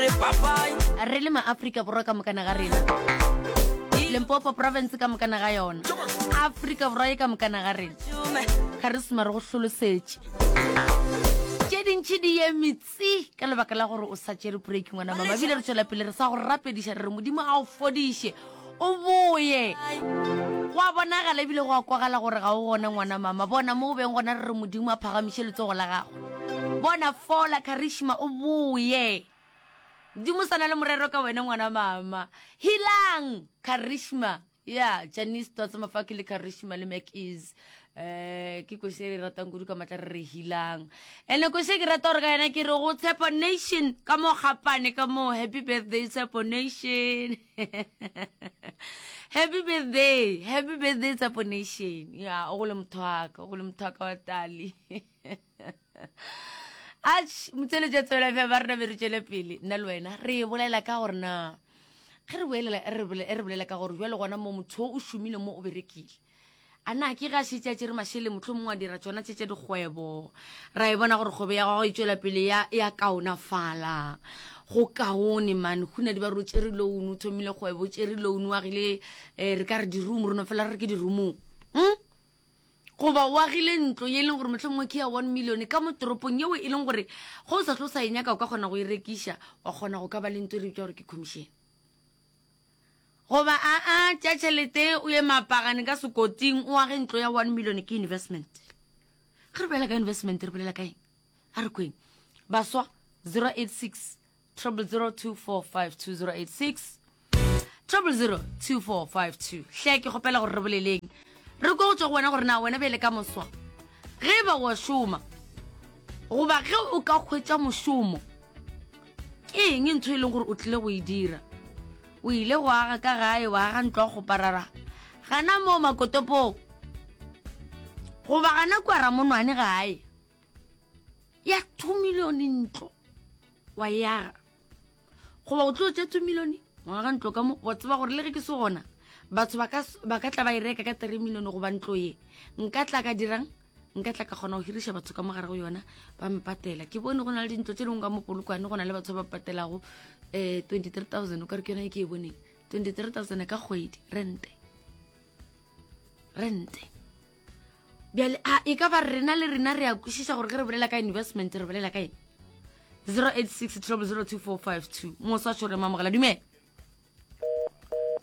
re le maaforika borwa ka mokana ga rena lempopo province ka mokana ga yona aforika borwa e ka mokana ga rena ga re suma re go hlolosetše tše dintšhi di ye metsi ka lebaka la gore o sa tšere break ngwana mama ebile re tswela pele re sa go rapediša re re modimo a o fodiše o boye go a bonagala ebile go a kwagala gore ga o gone ngwana mama bona mo o beng gona re re modimo a phagamiše letsogo la gago bona fola karishma o boye dimo sa na le morero ka wena ngwana mama hilang karishma ya janice totse mafaki le karishma le mac is um ke kosi e re ratang kudu ka matla re re hilang ande kosi e ke rata gore ka yena ke re go tshepo nation ka mo gapane ka mo happy birthday tshepo nation happy birthday happy birthday tsapo nation ya o go le motho waka o go le motho waka wa tali ach motseletša tswela fja ba rena be re tšwele pele nna le wena re bolela ka gore na ge re boelela e re bolela ka gore jwa le gona mo motho o šomile mo o berekile A na ke ge a šetše a tšere mašele mohlomongwe a dira tšona tše tša dikgwebo, ra e bona gore kgwebo ya gagwe e tšwela pele ya, ya kaonafala. Go kaone man, go na di ba re o tšere loan, o thomile kgwebo, o tšere loan, o agile eh, re ka re di-room, re no fela re re ke di-roomong. Hmm? goba o agile ntlo ye e leng gore mohlomongwe ke ya one million ka mo toropong yeo e leng gore go o sa tlo sa e nyaka o ka kgona go e rekiša wa kgona go ka ba le nto e re bitša gore ke commission Goba aa, tšea tšhelete o ye Maapagane ka Sekoting o age ntlo ya one million ke investment. Ge re bolela ka investment re bolela ka eng? A re kweng. Baswa 086 0002452086 00024520. Hle ke kgopela gore re boleleng. Re kwe go tšwa go wena gore na wena bjale ka moswa ge e ba o a šoma goba ge o ka hwetša mošomo, ke eng ntho e leng gore o tlile go e dira o ile go aga ka gae wa aga ntlo go parara gana moo makotopong goba gana kua ramonwane gae ya two million ntlo wa e aga goba o tlo tša two million wa aga ntlo ka mo wa tseba gore le ge ke se gona batho ba ka tla ba e reka ka three million goba ntlo ye nka tla ka dirang nka tla ka kgona go hiriša batho ka mogare go yona ba mpatela ke bone go na le dintlo tse dingwe ka mo polokwane go na le batho ba ba patelago um eh, twenty three thousand o ka re ke yona e ke e boneng twenty three thousand ka kgwedi rente rente bjale a e ka ba rena le rena re ya kwešiša gore ge re bolela ka investment re bolela ka eng zero eight six trouble zero two four five two mosa tšhore mamogela dumela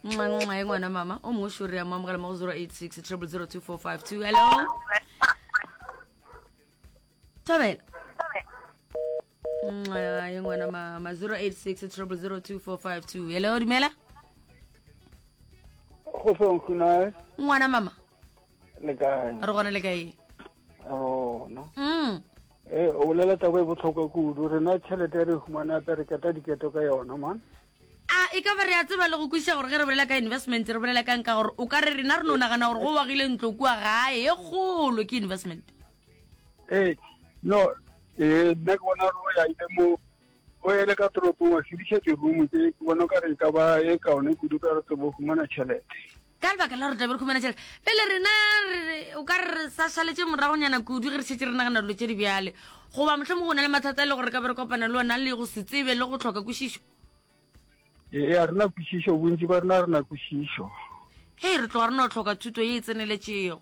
nxa ngwana mama o mongwe sure ya moamogela mo go 086 triple 02452 hello thabela nxa ye ngwana mama 086 triple 02452 hello dumela go feng khunae ngwana mama le kae re gona le kae rona mm eh o bolela taba e botlhokwa kudu rena tšhelete re humana pereketa diketo ka yona man A e ka ba re a tseba le go kwešiša gore ge re bolela ka investment re bolela kang? Ka gore o ka re rena re no nagana gore go wagile ntlo kua gae e kgolo ke investment. Ee, no, ee, nna ke bona gore o yaile mo o ele ka toropong wa sediša dirumo tse ke bona o ka re e ka ba e kaone kudu ka re tsebo fumana tšhelete. Ka lebaka la gore tlabe re humana tšhelete, pele rena re o ka re sa šaletše moragonyana kudu ge re šetše re nagana dilo tše di bjale. Goba mohlomong go na le mathata e le gore re ka be re kopana le ona le go se tsebe le go tlhoka kwešišo. Ee, a rena kwešišo, bontši ba rena rena kwešišo. Hei, re tloga re no tlhoka thuto ye e tseneletšego.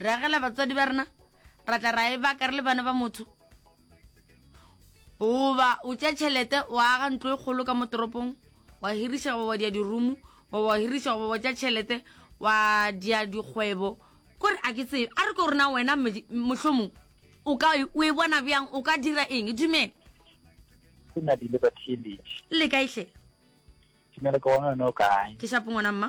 re agela batswadi ba rena ra tla ra e baka re le bana ba motho goba o tša tšhelete wa aga ntlo e kgolo ka mo toropong wa hiriša goba wa dia dirumo goba wa hiriša goba wa tša tšhelete wa dia dikgwebo kore a ke tsebe a re ko rena wena mohlomong o ka e, o e bona bjang o ka dira eng dumele ke na dile ba theletše le kaehle dumele ke gona yone o kae ke shapo ngwana mma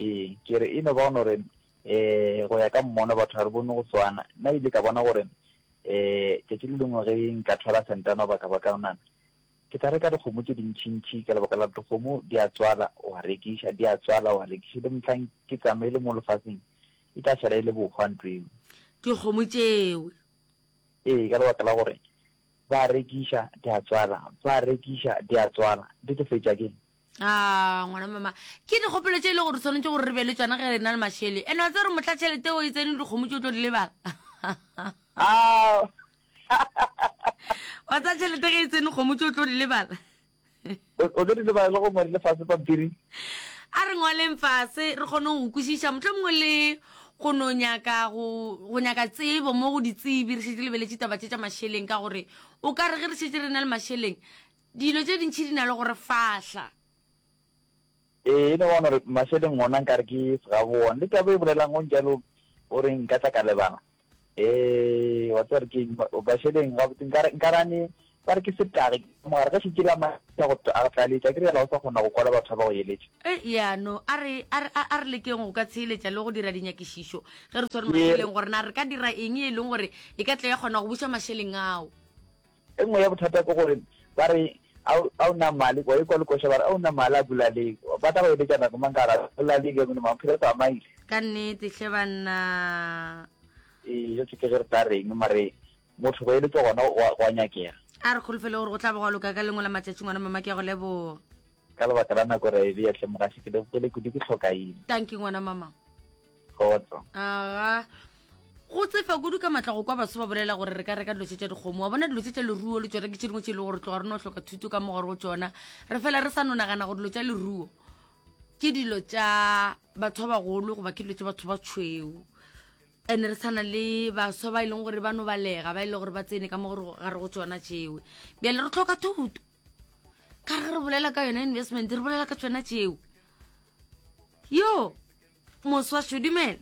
Ee, ke re e no ba gore um go ya ka mmono batho ga re bone go swana. Nna ile ka bona gore um tšatši le lengwe ge nka thwala sentana goba kabakanana, ke tla reka dikgomo tše dintšintši ka lebaka la dikgomo di a tswala wa rekiša, di a tswala wa rekiša, le mohlang ke tsamaile mo lefaseng e tla šala e le bohwa ntlo eo. Dikgomo tšeo. Ee, ka lebaka la gore ba rekiša di a tswala, ba rekiša di a tswala, di tlo fetša keng? a ngwana mama ke dikgopelo tše e le gore tshwanetse gore re be le tsona ge re na le mašele ene wa tse re motla tšhelete o e tsene dikgomo tse o tlo di lebala wa tsa tšhelete ge e tsene kgomo tse o tlo di lebala o tlo di lebala le go ngwale lefase pampiri a re ngwaleng fase re kgone go kwešiša motlho mongwe le go no nyaka go nyaka tsebo mo go ditsebi re šetse lebeletse taba tše tša mašeleng ka gore o ka re ge re šetse re na le mašeleng Dilo tše dintši di na le go re fahla. Ee, e no bona gore mašeleng ona nkare ke segabone. Le taba e bolelang o njalo o re nka tla ka lebala. Ee, wa tseba re ke mašeleng gabotse nkare nkare ane ba re ke setage mogare ga šitše la maša go a tlaletša ke re yala o sa kgona go kwala batho ba go eletša. E yano a re a re a re lekeng go ka tsheeletša le go dira dinyakišišo ge re tshwere mašeleng gore na re ka dira eng e leng gore e ka tla ya kgona go buša mašeleng ao. E nngwe ya bothata ke gore ba re a o na mali kwa ikwa lekoša ba re a o na mali a bulaleng ba tla go eletša nako mang ka ra bulaleng ya mone maphelo tsa maile ka nnete hle banna ee yo tseke ge re tla reng mare motho go eletša gona go a nyakega a re kgolofele gore go tla ba go loka ka lengwe la matšatšing ona mama ke ya go leboga Ka lebaka la nako re a e bea hle mogaši, ke lebopele kudu ke hlokaina. Tanki ngwana mama. Kgotso. Aga. Go tsefa kudu ka matla go kwa baso ba bolela gore re ka reka dilo tse tša dikgomo wa bona dilo tse tša leruo le tsona ke tše dingwe tše e le gore tloga re no hloka thuto ka mo gore go tsona re fela re sa no nagana gore dilo tša leruo ke dilo tša batho ba bagolo goba ke dilo tša batho ba tshweu and re tshwana le baswa ba e leng gore ba no balega ba e le gore ba tsene ka mo gore ga re go tsona tšewe bjale re tlhoka thuto ka re re bolela ka yona investment re bolela ka tsona tšeo yo moswa shodumela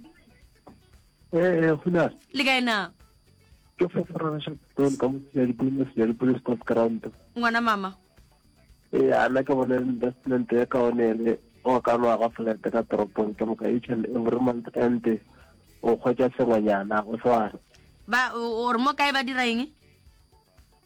ee eh, gona le kae na ke foforanaša pele ka motsea dipone se ya dipone sport ground ngwana mama ee eh, ana ke bone investment ya ka one ene o ka no aga flat ka toropong ke moka each and every month and o kgwetsa sengwenyana o sware ba o re mo kae ba dira eng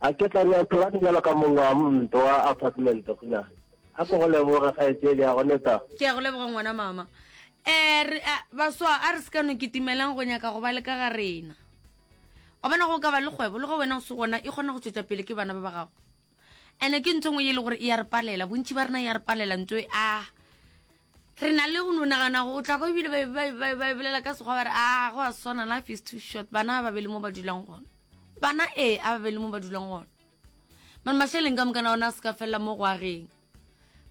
A ke tla nyatšo wa dijalo ka mongwe wa mnto wa apartment gona? A ko go leboge kgaetšedi ya go neta. Ke ya go leboga ngwana mama. Eh, re, a, baswa, a re se ka no kitimelang go nyaka go ba le ka ga rena. Wa bona go ka ba le kgwebo, le go wena o se gona, e kgona go tšwetša pele ke bana ba ba gago. Ene ke ntho ngwe ye le gore e ya re palela, bontši ba rena ya re palela ntho e, ah, Re na le go no nagana go tla kwa ebile ba bolela ka sekgwa ba re a ah, go a swana life is too short bana ba be le mo ba dulang gona bana ee a ba be le mo ba dulang gona mane mašeleng ka mokana ona a se ka felela mo go ageng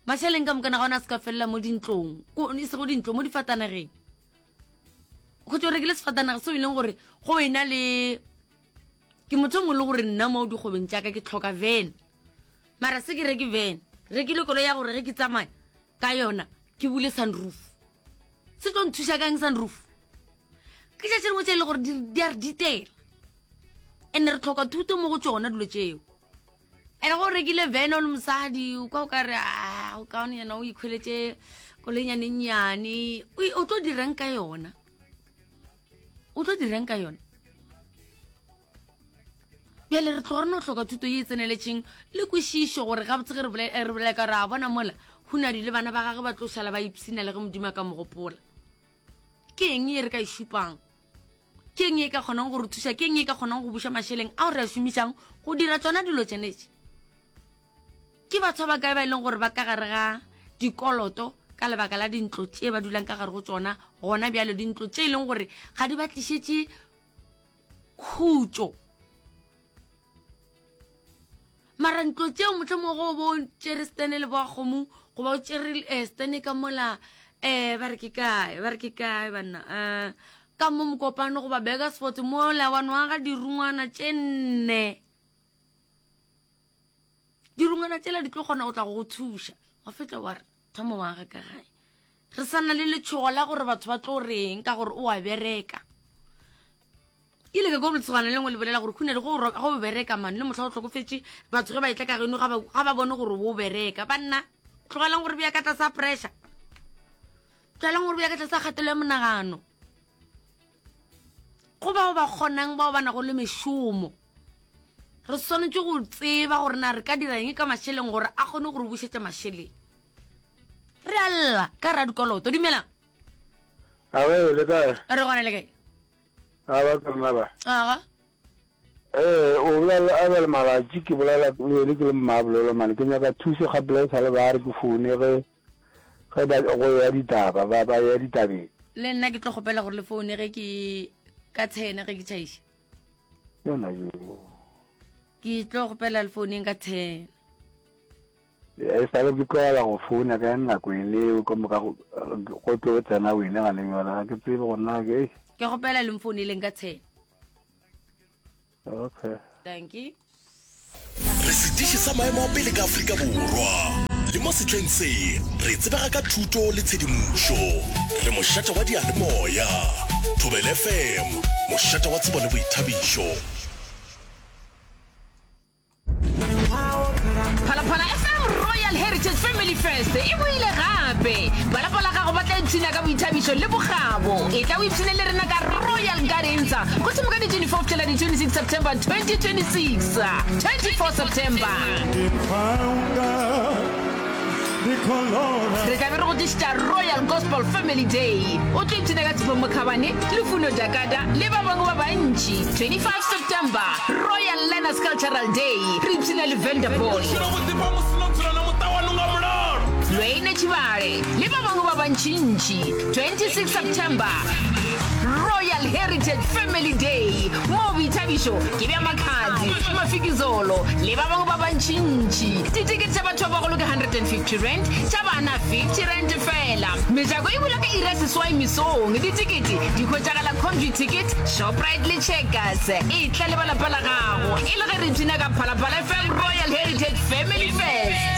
mašeleng ka mokana ga ona a se ka felela mo dintlong e se go dintlong mo difatanageng go tse o rekile sefatanaga seo e leng gore go ena le ke motho mongwe le gore nna mo dikgobeng jaaka ke tlhoka van mara se ke reke van rekile kolo ya gore ge ke tsamaya ka yona ke bule sunroof se tlo nthuša kang sunroof ke tša tšengwe tše e le gore di a re ditela and re tlhoka thuto mo go tsona dilo tseo and go rekile vene o le mosadi kwa o ka re ah, o kaone yena o ikgweletse kolenyanenyane o tlo dirang ka yona o tlo dirang ka yona bjale re tloga re no hloka thuto ye e tseneletšeng le kwešišo gore gabotse ge re eh, bolela ka gore a bona mola hunadi le bana ba gage ba tlo šala ba ipsina le ge modimo a ka mogopola ke eng e re ka e šupang ke eng e ka kgonang go re thuša ke eng e ka kgonang go buša mašeleng ao re a šomišang go dira tsona dilo tsenetse ke batho ba kae ba e leng gore ba ka gare ga dikoloto ka lebaka la dintlo tše ba dulang ka gare go tsona gona bjalo dintlo tše e leng gore ga di ba tlišetše khutšo mara ntlo tšeo motlho mogo o bo o tšere stene le boakgomo goba o tšere um eh, stene ka mola um ba re ke kae ba re ke kae banna um ka mo mokopano goba beka sport mola wa nwaga dirungwana tše nne dirungwana tšela di tlo kgona go tla go go thuša wa fetla wa re Thomo wa ga ka gae. Re sa na le letshogo la gore batho ba tlo reng ka gore o a bereka. Ke ile ka kwa boletsogwana le lengwe le bolela gore khune le go o bereka mane le motlha o tlhokofetse batho ge ba etla ka geno ga ba bone gore o bereka banna tlogelang gore bja ka tlasa pressure tlogelang gore bja ka tlasa kgatelo ya monagano go bao ba kgonang bao ba nago le mešomo re swanetše go tseba gore na re ka dira eng ka mašeleng gore a kgone go re bušetša mašeleng re a lla ka ra dikoloto dumelang awe le kae re gona le kae a ba ka rena ba aga ee o bolela a ba le malatši ke bolela le ke le mmabolelo mane ke nyaka thuso ga pela e sa le ba re ke foune ge ge ba go ya ditaba ba ba ya ditabeng le nna ke tlo kgopela gore le foune ge ke ka tshene ge ke tšhaiše yona yo ke tlo gopela le founeng ka ten e sale ke tlogela go founa ka nako e leo ka moka go tlo tsena wene ga le yola ga ke tsebe go nna ke ke gopela le mfouneleng ka ten okay thank you Re sediši sa maemo a pele ka Afrika Borwa le mo setleng se. Re tsebega ka thuto le tshedimošo. Re mošate wa diyalemoya, Thobela FM, mošate wa tsebo le boithabišo. Phalaphala FM Royal Heritage Family Fest e boile gape. Ba lapa la gago ba tla ipshina ka boithabišo le bokgabo. E tla o ipshine le rena ka Royal Gardens. Go thoma ka di 24 fihlela di 26 September 2026. 24 September. Re tla be re go tlišitša Royal Gospel Family Day. O tlo ipshina ka Tshepho Mokhabane, Lufuno Jakata le ba bangwe ba bantši. 25 September. Royal Learners Cultural Day. Re ipshina le Venda Boy. Lweine Tšhibale le ba bangwe ba bantšintši. 26 September. royal heritage family day moo boithabišo ke bja makhadzi mafikizolo le ba bangwe ba bantšintši ditikete tša batho ba bagolo ke 150 rand tša bana 50 rand fela mejako e bula ka iri ya seswai mesong ditikete di hwetšagala convy ticket shoprite le checkers e tla le ba lapa la gago e le ge re pina ka phalaphala fm royal heritage family fest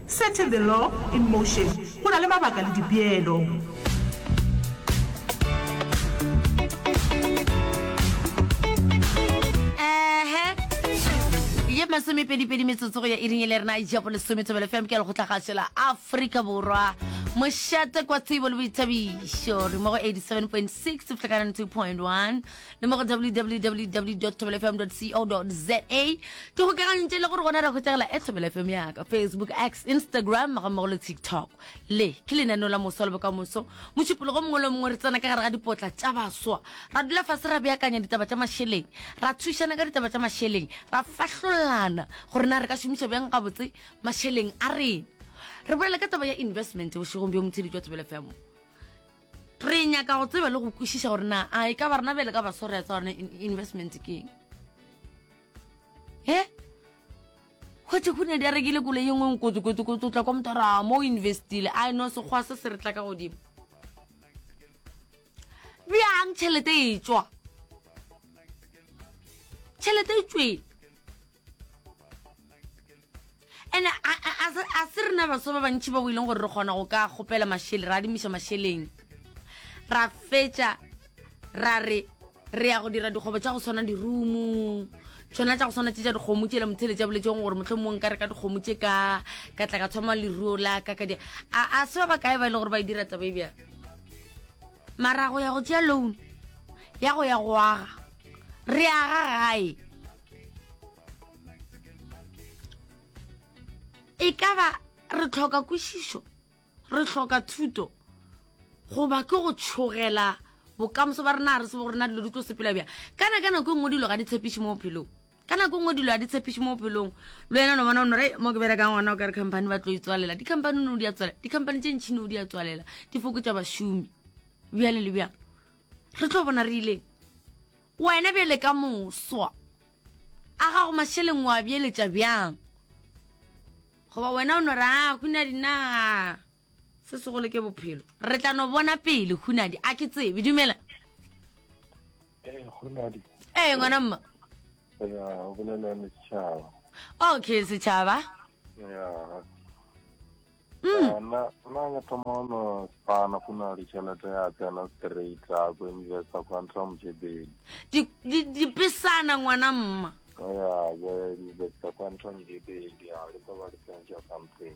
Setting the law in motion, go na le mabaka le dipeelo. ye masomepedipedi metsotso go ya iring e le rena ja bolesometsomelo fm ke lekgotla gasho la aforika borwa mošate kwa tsebo le boithabišo re mo go 87.6 flekanano 2.1 le mo go www thobelefm co za ke gokagantše le gore gona re hwetsegela e thobelefm yaka facebook x instagram ga mmogo le tiktok le ke lenaneo la moso le bokamoso mošupologo mongwe le mongwe re tsena ka gare ga dipotla tša baswa ra dula fase ra beakanya ditaba tša mašeleng ra thušana ka ditaba tša mašeleng ra fahlolana gore na re ka šomiša bjang gabotse mašeleng a rena re bolela ka taba ya investment bošegong bjo motshedi jwa thobelefm Re nyaka go tseba le go kwešiša gore na a e ka ba rena bele ka ba sorry tsa rena investment ke eng e gotse go ne di a rekile kole ye nngwe nkotsokotsokotso tla kwa motho a ra mo o investile a e no sekgwa se se re tla ka godimo bjang tšhelete e tswa tšhelete e tsweng ene a se re na baso ba bantšhi ba boileng gore re kgona go ka kgopela mašele ra adimiša mašeleng ra fetša ra re re ya go dira dikgobo tša go tshwana dirumo tshwana tša go tshwana tse tša dikgomo tšela motheletša boletseng gore motlho mongwe ka re ka dikgomo tše ka ka tla ka thoma leruo la ka ka di a se ba ba kae ba e le gore ba e dira taba e bjang Mara go ya go tšea loan ya go ya go aga re aga gae e ka ba re tlhoka kwešišo re tlhoka thuto goba ke go tšhogela bokamoso ba rena re se bo rena dilo di tlo sepela bjang kana ka nako e nngwe dilo ga di tshepiše mo bophelong ka nako e nngwe dilo a di tshepiše mo bophelong le wena no bona o nore mo ke berekang gona o ka re company ba tlo itswalela di-company no di a tswalela di-company tše ntšhine o di a tswalela di fokotsa bašomi bjale le bjang re tlo bona re ileng wena bjale ka moswa a gago mašeleng wa bjeletša bjang goba wena o nore a go na dinaga se segolo ke bophelo re tla no bona pele hunadi a ke tsebe dumela ee hunadi ee ngwana mma ya o bolela le setšhaba okay setšhaba ya mm. na na ya thoma no spana go na le tšhelete ya tsena straight a go investa kwa ntlha mojebedi dipesana ngwana mma ya go investa kwa ntlha mojebedi a le ba ba le tsentša something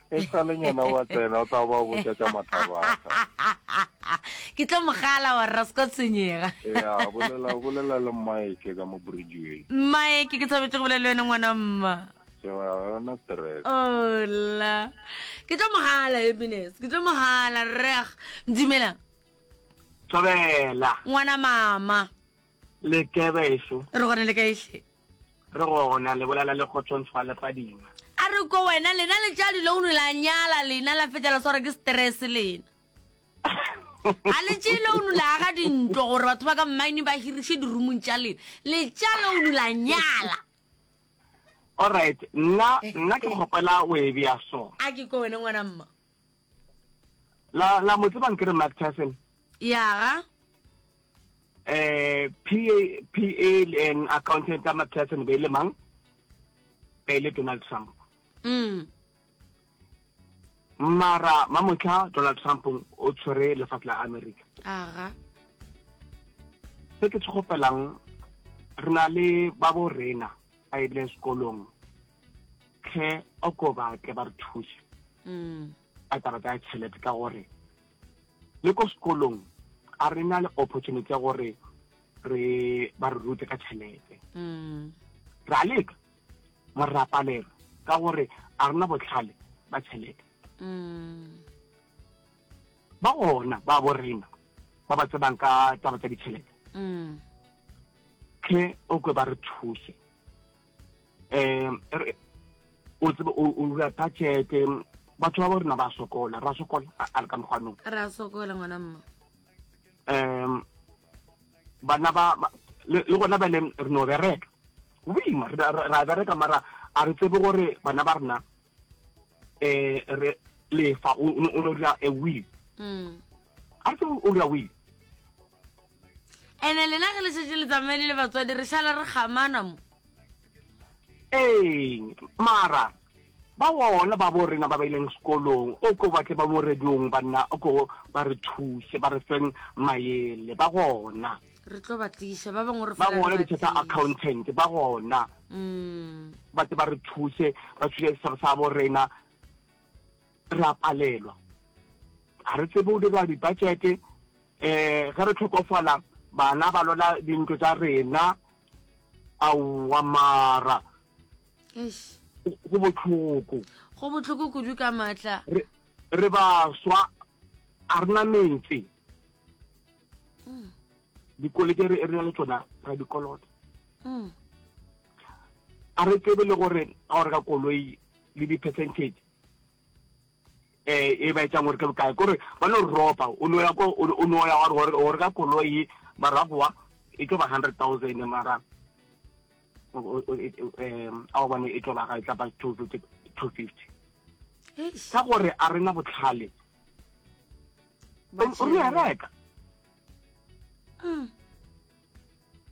e sa le nyana wa tsena o tla ba botsa tša mathabata ke tlo mogala wa rra seka tshwenyega ya bolela bolela le mmaeke ka mo bridgeway mmaeke ke thabetse go bolela le wena ngwana mma yona stress ola ke tlo mogala happiness ke tlo mogala rreg ndumelang thobela ngwana mama le ke beso re gona le kaehle re gona le bolela le kgotsong tshwa le padima a re ko wena lena le tša dilo unu la nyala lena la fetela swara ke stress lena a le tše le unu la aga dintlo gore batho ba ka mmaine ba hiriše dirumong tša lena le tša le unu la nyala allright nna nna ke kgopela o e bea so a ke ko wena ngwana mma la la mo tsebang ke re Mark Tyson ya ga eh PA PA and accountant Mark Tyson be le mang be le Donald Trump mm mara mamotla Donald Trump o tshwere lefatshe la America aga se ke tshogopelang re na le ba bo rena ba e bile sekolong tlhe oko ba tle ba re thuse mm. ka taba tsa tšhelete ka gore le ko sekolong a re na le opportunity ya gore re ba re rute ka tšhelete mm. ra leka mo re rapalelwa ka gore a rena botlhale ba tšhelete mm. ba gona ba borena ba ba tsebang ka taba tsa ditšhelete tle o kwe ba re thuse um o tsebe o rura budgete batho ba bo rena ba sokola ra sokola a re ka mokgwanong ra sokola ngwana mma um bana ba le gona bene re no bereka boima ra bereka mara a re tsebe gore bana ba rena eh re lefa o no dira a will mm. a se o dira will ene lena ge le setse le tsamaele le batswadi re šala re gamana mo ee mara ba wona ba bo rena ba ba ileng sekolong o ko batle ba mo radiong banna o ko ba re thuse ba re feng maele ba gona re tlo ba tliša ba bangwe re ba fela re gona ba ditsha tsa tliša. accountant ba gona Mm. ba tle ba re thuse ba thuse setshaba sa bo rena re a palelwa ga re tsebe o dira dibudgete um ge re tlhokofala bana ba lola dintlo tsa rena aowa mara Eish. go go botlhoko go bohloko kudu ka maatla re re baswa a rena metse mm. dikoleke re na le tsona ra dikoloto mm. a re tsebe le gore ga o reka koloi le di-percentage eh e ba etsang gore ke bokae kore ba no ropa o no ya ko o no ya gore o reka koloi maragoa e tlo ba hundred thousand mara um a o bone e tlo ba ga e tla ba two fifty ka gore a rena botlhale ba o re reka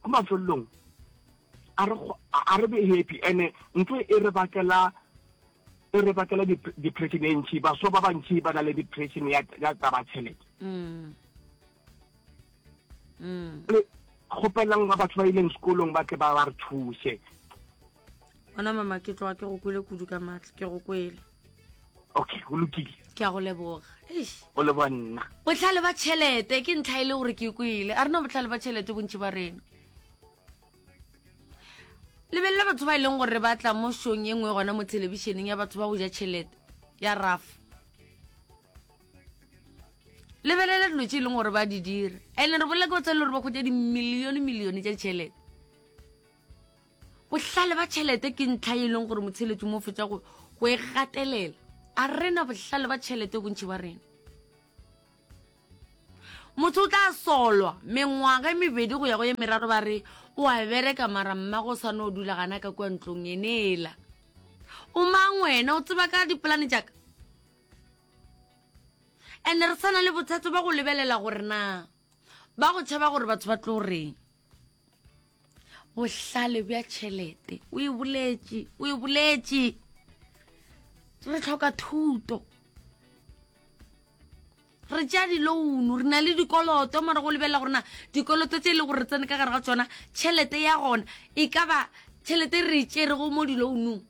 ko mafelelong a re a re be happy ene ntho e re bakela e re bakela depression e ntšhi baswa ba bantšhi ba na le depression ya taba tšhelete kgopelang ba batho ba ileng sekolong ba tle ba ba re thuse bona mama ke tloga ke go kwele kudu ka maatla ke go kwele okay go lokile ke a go leboga o leboga nna botlhale ba tšhelete ke ntlha e le gore ke kwele a rena botlhale ba tšhelete bontši ba rena lebelela batho ba e leng gore ba tla mo shong e nngwe gona mo thelebišeneng ya batho ba go ja tšhelete ya rafa lebelela dilo tse e leng gore ba di dira and-e re bolela ke ba tshwanele gore ba kgotsa dimilione milione tša ditšhelete bohlale ba tšhelete ke ntlha e leng gore motsheletso mo fetsa go go e gatelela a rena bohlale ba tšhelete bontšhi ba rena motho o tla solwa mengwaga e mebedi go ya go ye meraro ba re o a bereka mara mmago o swane o dula gana ka kua ntlong eneela o mang wena o tseba ka dipolane jaaka and re sana le bothata ba go lebelela gore na ba go tšhaba gore batho ba tlo reng bohlale bja tšhelete o e boletše o e boletše re tlhoka thuto re tšea dilounu re na le dikoloto mara go lebelela gorena dikoloto tse e le gore re tsene ka gare ga tsona tšhelete ya gona e ka ba tšhelete re e tšerego mo dilounung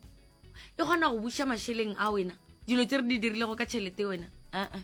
e kgona go buša mašeleng a wena dilo tse re di dirilego ka tšhelete wena uh-uh.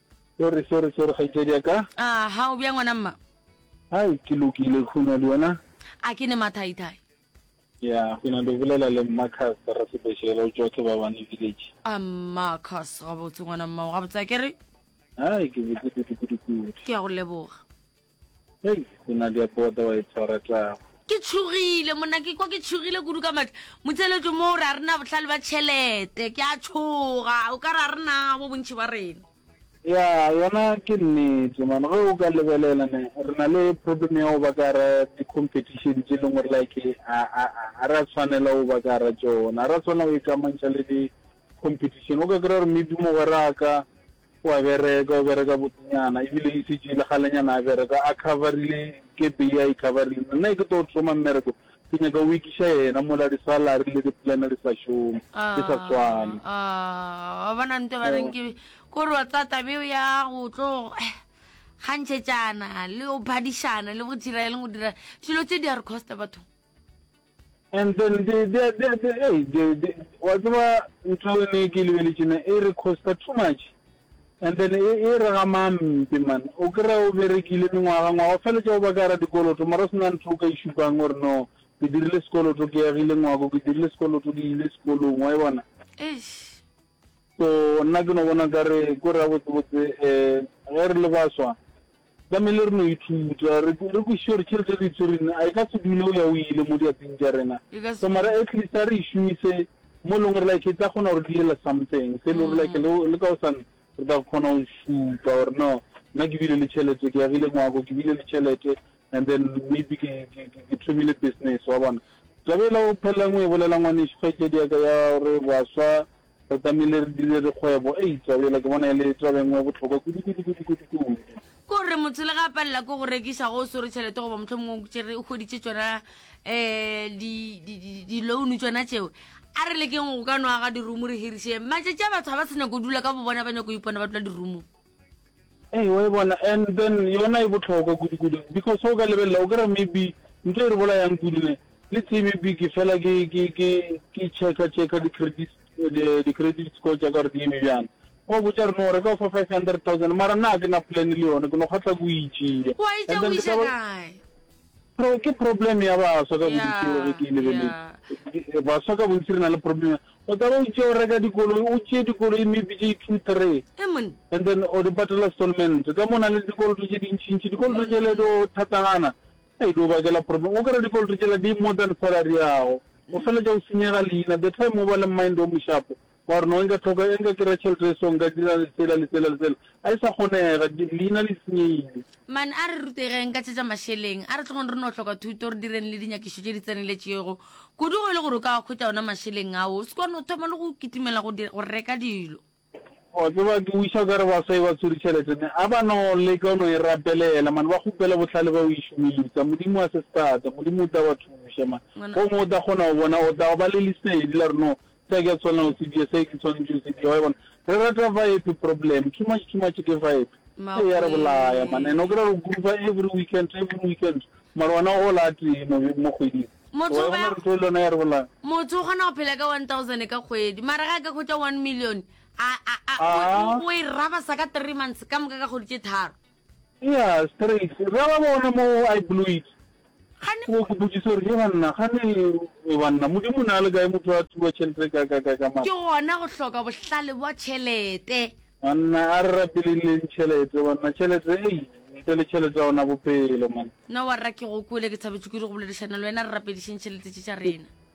Sorry, sorry, sorry, kgaitsedi ya ka. Ah, ha o bjang ngwana mma? Hai, ke lokile, khuna le wena? A ke ne mathaithai. Ya, ke na le bolela le Marcus ra sebešela o tšwa ke ba bane village. Ah, Marcus, ga botse ngwana mma, ga botse ke re? Hai, ke botse kudu kudu kudu. Ke ya go leboga. Hei, go na dia bota wa e tshwara tlago. Ke tšhogile monna ke kwa ke tšhogile kudu ka matla motseletso mo o re a rena botlhale ba tšhelete ke a tšhoga o ka re a rena bo bontšhi ba rena ya yona ke nnete mane ge o ka lebelela ne re na le problem ya go ba ka ra di-competition tse e leng gore like a re a tshwanela go ba ka ra tsona a re a tshwanela go ikamantšha le di-competition o ka kry-a gore maybe mogweraka O a bereka, o bereka botenyana, ebile e se tšeile kgalenyana a bereka, a cover-rile kepe ye a e cover-rile. Nna e ke tlo thoma mmereko, ke nyaka o ekiša yena mola di-salary le di-plan di sa šome, di sa swane. Aa, aa, wa bona nto ba reng ke, ko re wa tsaya taba eo ya go tlo eh, kgantšhetšana le go phadišana le go dira eng le go dira eng, dilo tse di a re costa bathong. And then they, they, they, they, hey, they, they, wa tseba ntho e ne ke lebeletšena e re costa too much and then e, e re ga mampe man o kry o berekile mengwaga ngwaga o feletša o ba ka ra dikoloto mara o sena ntho o ka išupang gore no ke dirile sekoloto ke yagile ngwako ke dirile sekoloto ke ile sekolong wa e bona so nna ke no bona ka re ko re ya botsebotse um ge re le baswa Tlamehile re no ithuta, re, re kwešiše gore tšhelete e re e tswereng a e ka se dule o ya o ile mo diatsing tša rena. E ka se So mara dule. at least a re e šomise mo e leng gore like e tla kgona gore diela something. Se e le gore like le, le ka gosane re tla kgona go šupa gore no, nna ke bile le tšhelete, ke agile ngwako, ke bile le tšhelete and then maybe ke, ke, ke, ke thomile business, wa bona. Taba e la go phelelang o e bolela ngwanešu, kgaetšedi ya ka ya gore baswa, Re tlamehile re dire dikgwebo. Eupša bjale ke bona e le taba e nngwe ya bohlokwa kudu, kudu, kudu, kudu, kudu. Ke gore motho le ge a palela ke go rekiša ge o swere tšhelete goba mohlomongwe o tšere o hweditše tšona um di-loan tšona tšeo a re lekeng go ka no aga dirumo re hiriše matšatši a batho ga ba se nyako dula ka bo bona ba nyako ipona ba dula dirumong Ee, wa e bona, and then yona e bohlokwa kudu-kudu, because o ka lebelela, o kira maybe ntho e re bolayang kudu ne, le tse maybe ke fela ke checker-checker di-credit di-credit score tša ka gore di eme bjang. Wa botša re no reka o fa five hundred thousand, mara na ke na plan le yona, ke no kgahla ko e tšea, and then ke tla ba. Pro ke problem ya baswa ka bontši yeah, ge ke e lebeletse yeah. baswa ka bontši re na le problem o tla ba o tšeo reka dikoloi o tšee dikoloi maybe tše two three Emon. and then o di patela stolment ka mo na le dikoloto tše dintšintši dikoloto tše le do thatagana e di o bakela problem o kry dikoloto tšela di more than salary yago o fela tša o senyega leina the time o ba le mind o moshapo Wa re no, nka hloka e, nka kry-a tšhelete e so, nka dira sela le sela le sela. A e sa kgonega, leina le senyegile. Man, a re rutegeng ka tše tša mašeleng. A re tlogeng re no hloka thuto, re direng le dinyakišo tše di tseneletšego. Kudu go e le gore o ka a hwetša ona mašeleng ao, o se ka no thoma le go kitimela go dira, go reka dilo. Wa tseba, ke wiša o ka re baswa e ba tshwere tšhelete, ne. A ba no leka go no e rapelela, man, ba kgopela bohlale ba go e šomiša. Modimo a se sthata. Modimo o tla ba thuša, man. Gomme o tla kgona go bona, o tla ba le lesedi la gore no Se ke tsona o se bie, se ke swanetše o se bie, wa e bona. Re rata vibe problem, too much, too much ke vibe. Ee, ya re bolaya, man, and o kry-a re gruva every weekend, every weekend, mara wena o gola a tee mo, mo kgweding. Motho o ya, motho o kgona go phela ka one thousand ka kgwedi, mara ga a ka khwetša one million, a, a, a, o, o, o e raba sa ka three months, ka moka ka kgwedi tše tharo. Eya, straight. Ra ba bona mo I blew it. Gane Wo ke botšiso gore ke banna gane e banna modimo na le kae motho a thuba tšhelete ka ka ka ka mara. ke gona go hloka bohlale bwa tšhelete. Banna a re rapeleng le tšhelete banna tšhelete ei ntle le tšhelete a ona bopelo man. Nna warra ke go kwele ke thabetše kudu go boledišana le wena re rapedišeng tšhelete tše tša rena.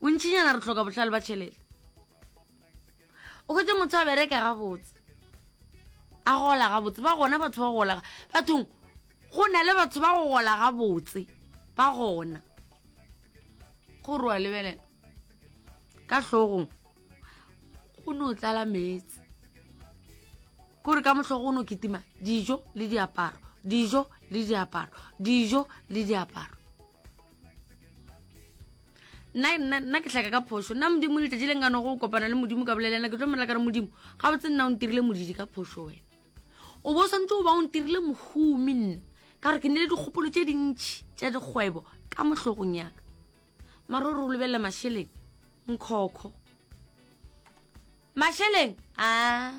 bontšinyana re tlhoka bohlale ba tšhelete o kgwetse motho a bereka gabotse a gola gabotse ba gona batho ba gola bathong go na le batho ba go gola gabotse ba gona gore wa lebelela ka tlhogong go ne o tlala meetse kore ka motlhogo o ne o kitima dijo le diaparo dijo le diaparo dijo le diaparo nna ke tlhaka ka phoso nna modimo letšatši le nkano go kopana le modimo ka bolelena ke tlo molela ka re modimo ga botse nna o ntirile modidi ka phoso wena o bo swantse o ba o ntirile mohumi nna ka gore ke ne le dikgopolo tše dintšhi tša dikgwebo ka mohlogong yaka mara o re o lebelela mašeleng nkhokho mašeleng a